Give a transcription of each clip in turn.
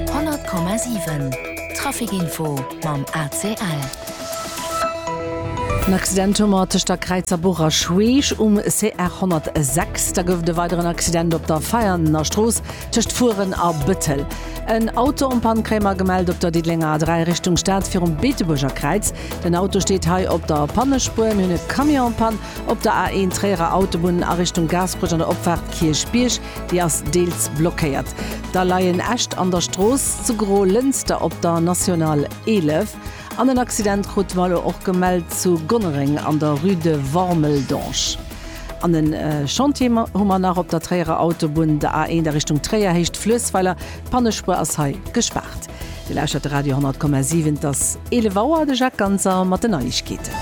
100,7 Traficinfo mam ACL. En Accident hu mer tëscht der Kräizer Buch a Schweech um CR 106. Da gouf et e weideren Accident op der Veianer Strooss tëscht Furen a Bëttel. En Auto am Panne kréie mer gemellt op der Diddelenger A3 Richtung Stad virum Beetebuerger Kräiz. Den Auto steet hei op der Pannespuer. Mir hunn e Camion en Panne op der A1 Tréierer Autobunn a Richtung Gaasperech an der Opfaart Kierchbierg. déi ass deels blockéiert. Da leien Äscht an der Strooss zu Gro-Lënster op der National 11 an en Accident krute mer elo och gemellt zu Gonnereng an der Rue de Wormeldange. An e Chantier hu mer nach op der Tréierer Autobunn, der A1 a Richtung Tréier, Héicht Fluessweiler. D'Pannespuer ass hei gespaart. Dir lauschtert de Radio 10,7. Et ass 11 Auer, de Jacques Ganser mat den Neiegkeeten.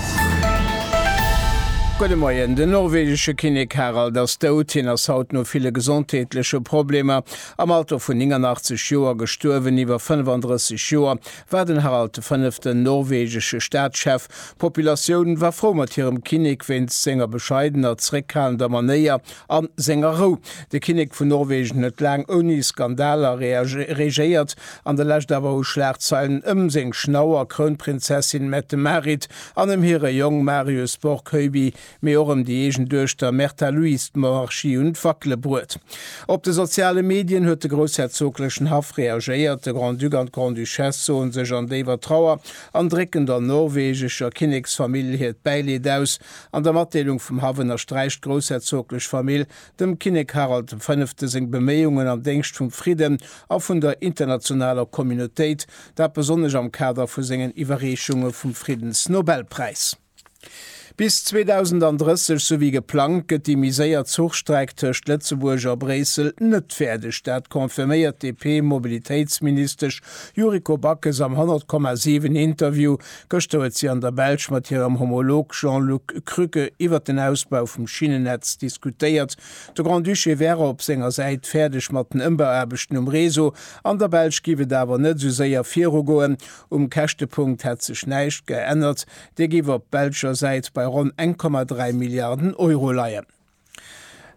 Gudde Moien, Den norwegesche Kinnek Harald ass dout. Hien ass haut no ville gesondheetleche Problemer am Alter vun 89 Joer gestuerwen. Iwwer 35 Joer war den Harald de fënneften norwegesche Staatschef. D'Populatioun war frou mat hirem Kinnek wéinst senger bescheidener, zeréckhalender Manéier A senger Rou. De Kinnek vun Norwegen huet laang ouni Skandaler regéiert, an der Lescht awer hu Schlagzeilen ëm seng Schnauer, Krounprinzessin Mette-Marit, an ëm hire Jong Marius Borgkeubi, mee och ëm déi eegen Duechter Märtha Louise d'Monarchie un d'Wackele bruet. Op de soziale Medien huet de groussherzoglechen Haff reagéiert. De Grand-Duc an d'Grande-Duchesse soen sech an déiwer Trauer an drécken der norwegescher Kinneksfamill hiert Bäileed aus. An der Matdeelung vum Haff ënnersträicht d'groussherzoglech Famill dem Kinnek Harald dem Fënnefte seng Beméiungen am Déngscht vum Fridden a vun der internationaler Communautéit, dat besonnesch am Kader vu sengen Iwwerreechunge vum Friddensnobelpräis. Bis 2030, sou wéi geplangt, gëtt déi miséiert Zuchstreck tëscht Lëtzebuerg a Bréissel net fäerdeg. Dat confirméiert d'DP-Mobilitéitsministesch Yuriko Backes am 100,7 Interview Gëschter huet si an der Belsch mat hirem Homolog Jean-Luc Krücke iwwert den Ausbau vum Schinnennetz diskutéiert. De Grand-Duché wäre op senger Säit fäerdeg mat den Ëmbauaarbechten um Réseau. An der Belsch giff et awer net esou séier virugoen. Um Käschtepunkt hätt sech näischt geännert, dee giff op belscher Säit bei ronn 1,3 Milliarden Euro leien.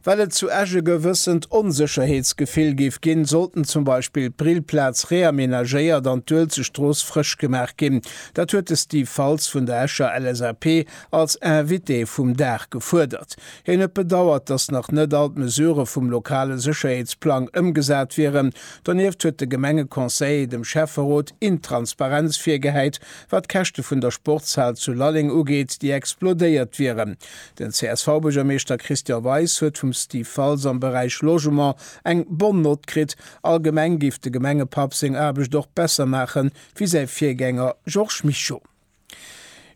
Well et zu Esch e gewëssent Onsécherheetsgefill géif ginn, sollten zum Beispill d'Brillplaz reamenagéiert an d'Uelzechtstrooss frësch gemaach ginn. Dat huet de Steve Faltz vun der Escher LSAP als Invité vum Dag gefuerdert. Hien huet bedauert, datt nach net all d'Mesurë vum lokale Sécherheetsplang ëmgesat wieren. Donieft huet de Gemengeconseiller dem Schäfferot Intransparenz virgehäit, wat d'Käschte vun der Sportshal zu Lalleng ugeet, déi explodéiert wieren. Den CSV-Buergermeeschter Christian Weis huet vum Steve Faltz am Beräich Logement eng Bonne Note kritt. Allgemeng géif de Gemengepapp seng Aarbecht och besser maache wéi säi Virgänger Georges Mischo.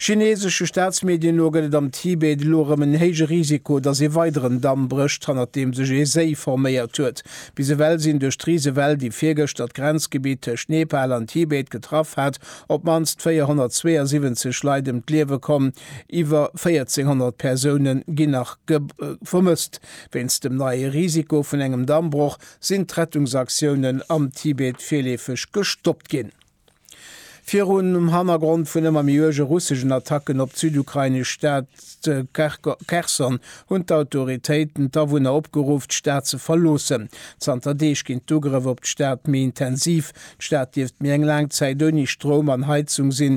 Chineesesche Staatsmedien no gëtt et am Tibet elo erëm en héije Risiko, datt ee weideren Damm brécht, hannert deem sech ee Séi forméiert huet. Bis ewell sinn duerch d'Risewell, déi virgëschter d'Grenzgebitt tëscht Nepal an Tibet getraff hat, op d'mannst 472 Leit ëm d'Liewe komm. Iwwer 1400 Persoune ginn nach vermësst. Wéinst dem neie Risiko vun engem Dammbroch sinn d'Rettungsaktiounen am Tibet virleefeg gestoppt ginn. Virum Hannergrond vun ëmmer méi uerge russeschen Attacken op d'südukrainesch Stad Cherson hunn d'Autoritéiten d'Awunner opgeruff, d'Stad ze verloossen. Zanter Deeg ginn d'Ugrëff op d'Stad méi intensiv. D'Stad dierft méi eng laang Zäit ouni Stroum an Heizung sinn,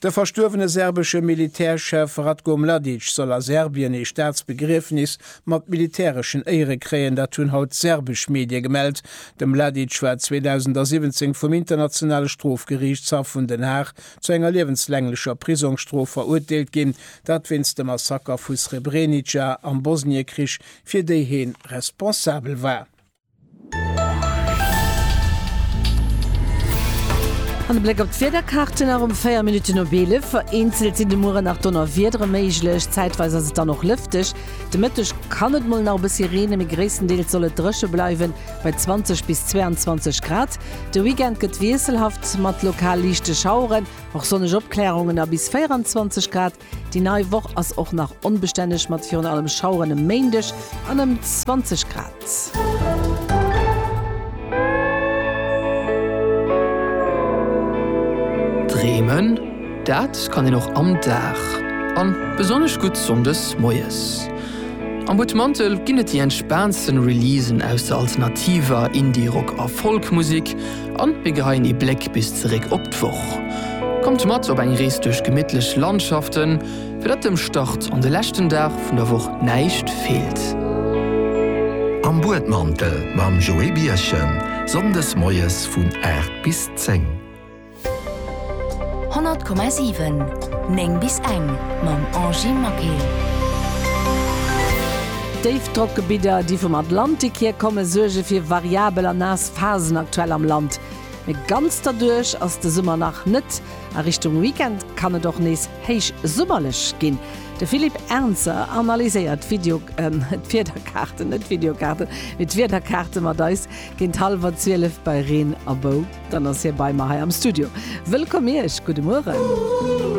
De verstuerwene serbesche Militärchef Ratko Mladic soll a Serbien ee Staatsbegriefnis mat militäreschen Éiere kréien, dat hunn haut serbesch Medie gemellt. De Mladic war 2017 vum Internationale Strofgeriichtshaff vun Den Haag zu enger liewenslänglecher Prisongsstrof verurteelt ginn, dat wéinst dem Massaker vu Srebrenica am Bosniekrich, fir déi heen responsabel war. An e Bléck op d'Wiederkaarte nach um 4 Minutten op 11. Vereenzelt sinn de Muere nach Donnerwiedere méiglech, zäitweis ass et dann och lëfteg. De Mëtteg kann et mol nach e bëssi reenen, mee gréisstendeels soll et dréche bleiwen, bei 20 bis 22 Grad. De Weekend gëtt wiesselhaft, mat lokal liichte Schaueren, och sonneg Opklärungen a bis 24 Grad. Déi nei Woch ass och nach onbestänneg mat virun allem Schaueren e Méindeg an ëm 20 Grad. Dreemen, dat kann een och am Dag, an besonnesch gutt Sonndes moies. Am Butmantel ginn et déi entspaantsten Releasen aus der alternativer, Indie-, Rock a Folk-Musek. An mir geheien ee Bléck bis zeréck op d'Woch. Kommt mat op eng Rees duerch gemittlech Landschaften, fir datt dem Start an de leschten Dag vun der Woch näischt feelt. Am Buedmantel mam Joé Birchen, Sonndes moies vun 8 bis 10. 100,7, 9 bis eng, mam Angie Maquet. Déifdrockgebidder, déi vum Atlantik hier kommen, suerge fir variabel a naass Phasen aktuell am Land, mee ganz derduerch ass de Summer nach net. A Richtung Weekend kann et och nees héichsummerlech ginn. De Philippe Ernzer analyséiert d'Wiederkaarten, net d'Videokaarten, mee d'Wiederkaarte mat eis. Géint hallwer 12 bei Reen a Bou, dann ass hie bei mer hei am Studio. Wëllkomm Iech, gudde Mueren.